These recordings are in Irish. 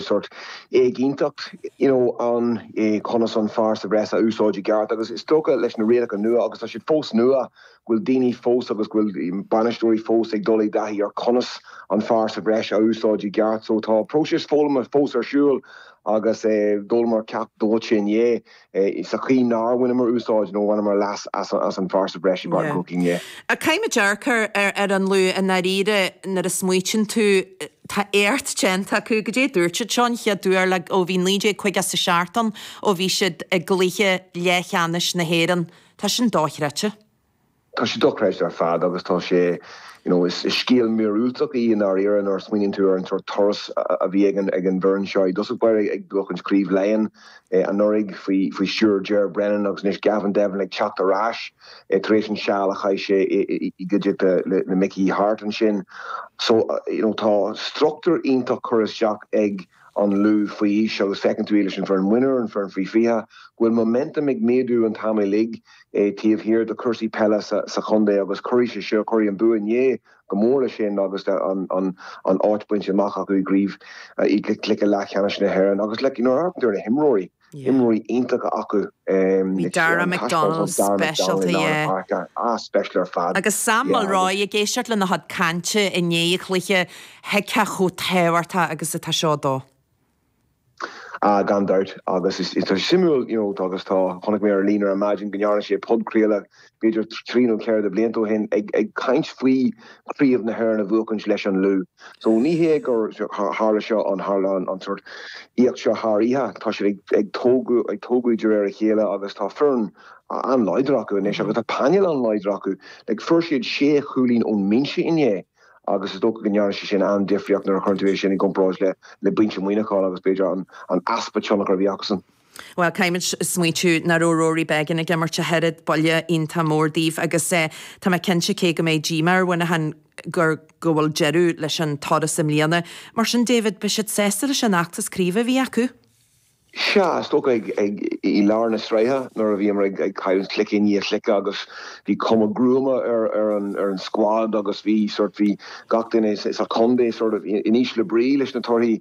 sórt éigínteacht you know ann i conas an fear sa bhreis a úsáid i gceart agus is dócha leis na rialacha nua agus tá siad fós nua go bhfuil daoine fós agus go bhfuil bainisteoirí fós ag dul i dtaithí ar conas an fear sa bhreis a úsáid i gceart so tá próiseas foghlama fós ar siúl agus é eh, d'fhoghlaimíomar ceacht dóite inné. sa chaoi nár bhaineamar úsáid nó bhaineamar leas as an bhfear sa bhreis i bpáirc an Chrócaigh inné. Caithfimid dearcadh ar an Lú i ndáiríre nuair a smaoitíonn tú tá éacht déanta acu. Goidé dúirt siad seo an chéad uair le ó bhí 1950 a seacht ó bhí siad i gcluiche leathcheannais na hÉireann. Tá sin dochreidte. Tá sé dochreidte ar fad agus tá sé, you know, is scéal míorúilteach í i ndáiríre nuair a smaoiníonn tú ar an sórt turas a bhí ag an bhfoireann seo i dtosach báire ag buachaint Craobh Laighean anuraidh faoi stiúir Ger Brennan agus anois Gavin Devlin ag teacht ar ais tar éis an seal a chaith sé i gcuideachta le Mickey Harte ansin. So, you know, tá structúr iontach curtha isteach ag an Lú faoi aois agus feiceann tú iad leis an bhfoireann mionúr, an foireann faoi 20, go bhfuil momentum ag méadú an t-am uilig taobh thiar de cúrsaí peile sa chontae agus cuirfidh sé seo, cuirfidh an bua inné go mór leis sin agus an áit bainte amach acu i gCraobh i gcluiche leathcheannais na hÉireann agus like, you know, ar na himreoirí. imreoirí iontacha acu. Bhí Darragh McDonnell speisialta, yeah. Agus Sam Mulroy ag éisteacht lena chuid cainte i ndiaidh an chluiche, thuigfeá chomh tábhachtach agus atá seo dó. Ah, gan dabht. Agus tá sé suimiúil, you know, agus tá, chonaic mé ar líne ar maidin go ndearna sé podchraoladh b'fhéidir trí nó ceithre de bhlianta ó shin, ag caint faoi Chraobh na hÉireann a bhuachaint leis an Lú. So ní hé gur tharla seo an tharla an sórt éacht seo thar oíche. Tá siad ag ag tógadh ag tógadh de réir a chéile agus tá foireann an-láidir acu anois agus tá painéal an-láidir acu. Like fuair siad sé chúilín ón mbinse inné agus is dócha go ndearna sé sin an-difríocht nuair a chuireann tú é sin i gcomparáid le le binse Mhuineacháin agus b'fhéidir an an easpa tionchar a bhí acusan. Bhuel, caithfimid smaointiú nach raibh Rory Beggan ag imirt ach oiread, buille iontach mór daoibh agus tá mé cinnte cé go mbeidh díomá ar Mhuineachán gur go bhfuil deireadh leis an turas i mbliana. Mar sin David, beidh siad sásta leis an fheachtas craoibhe a bhí acu? Sea, is dócha ag i lár na sraithe nuair a bhíomar ag cailleadh cluiche i ndiaidh cluiche agus bhí cuma gruama ar an squad agus bhí sort, bhí gach duine sa chontae sort of in ísle brí leis na torthaí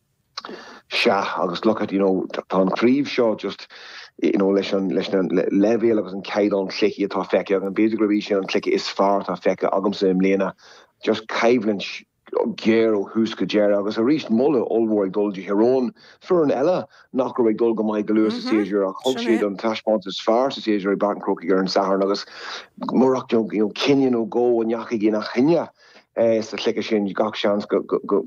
Sea, agus look at, you know, tá an chraobh seo just, you know, leis an, leis an leibhéal agus an caighdeán cluichí atá feicthe agam, b'fhéidir gurb í sin an cluiche is fearr atá feicthe agamsa i mbliana. Just coimhlint ghéar ó thús go deireadh agus arís moladh ollmhór ag dul do Thír Eoghain foireann eile nach raibh ag dul go maith go luath sa séasúr ach thug siad an taispeáint is fearr sa séasúr i bPáirc an Chrócaigh ar an Satharn agus murach, you know, cinneadh nó dhó a ndeachaigh ina choinne. sa chluiche sin gach seans go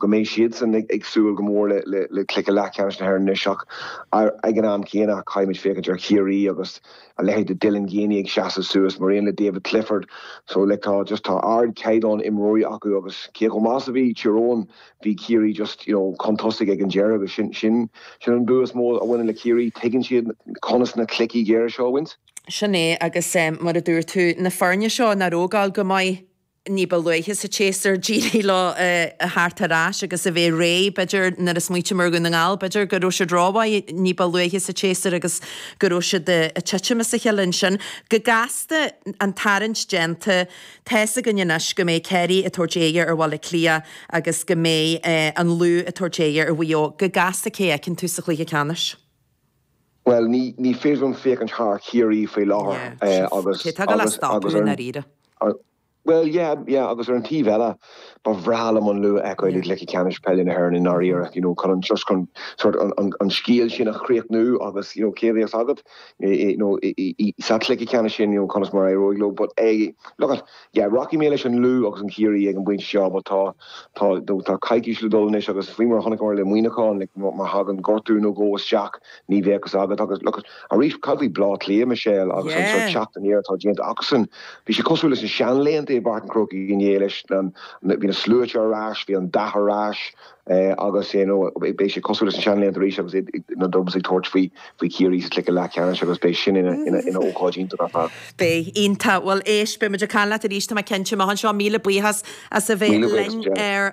mbeidh siadsan ag súil go mór le cluiche leathcheannais na hÉireann anois ach ag an am céanna caithfimid féachaint ar Chiarraí agus a leithéid de Dylan Geaney ag seasamh suas mar aon le David Clifford so like tá just tá ardchaighdeán imreoirí acu agus cé chomh maith is a bhí Tír Eoghain bhí Ciarraí just you know chun tosaigh ag an deireadh agus sin sin sin an bua is mó a bhaineann le Ciarraí tuigeann siad conas na cluichí géara seo a bhaint Sin é agus um, mar a dúirt tú na foirne seo nach raibh ag gabháil go maith. ní ba luaithe sa tséasúr, d'éirigh leo a theacht ar ais agus a bheith réidh, b'fhéidir, nuair a smaoiníonn muid ar Dhún na nGall, b'fhéidir go raibh siad rómhaith ní ba luaithe sa tséasúr agus go raibh siad ag titim as a cheile ansin. Go gasta, an tarraingt déanta, tá's againn anois go mbeidh Ciarraí ag tabhairt aghaidh ar Bhaile Átha Cliath agus go mbeidh an Lú ag tabhairt aghaidh ar Mhaigh Eo. Go gasta, cé a fheiceann tú sa chluiche ceannais? Bhuel ní féidir liom féachaint thar Chiarraí faoi láthair agus agus ar an taobh eile ba bhreá liom an Lú a fheiceáil i gCluiche Ceannais Peile na hÉireann i ndáiríre chun just chun sort an scéal sin a chríochnú agus cá bhfios agat sa chluiche ceannais sin conas mar éireoidh leo but look Yeah, rachaidh mé leis an Lú agus an Chiarraí ag an bpointe seo, but tá, tá, tá coicís le dul anois agus faoi mar a chonaiceamar le Muineachán, like, má, má thagann gortú nó dhó isteach, ní bheadh a fhios agat agus, look, arís, cad faoi Bleá Cliath, Michelle, agus an sort Yeah. teacht aniar atá déanta acusan? Bhí sé cosúil leis na seanlaethanta i bPáirc an Chrócaigh inné leis na, na, bhí na sluaite ar ais, bhí an dath ar ais, agus you know beidh sé cosúil leis na seanlaethanta arís agus na Dubs ag tabhairt faoi faoi Chiarraí sa chluiche leathcheannais agus beidh sin ina ina ina ócáid iontach ar fad. Beidh, iontach. Bhuel éist, beimid ag caint leat arís tá mé cinnte. Maith anseo, míle buíochas as a bheith linn ar.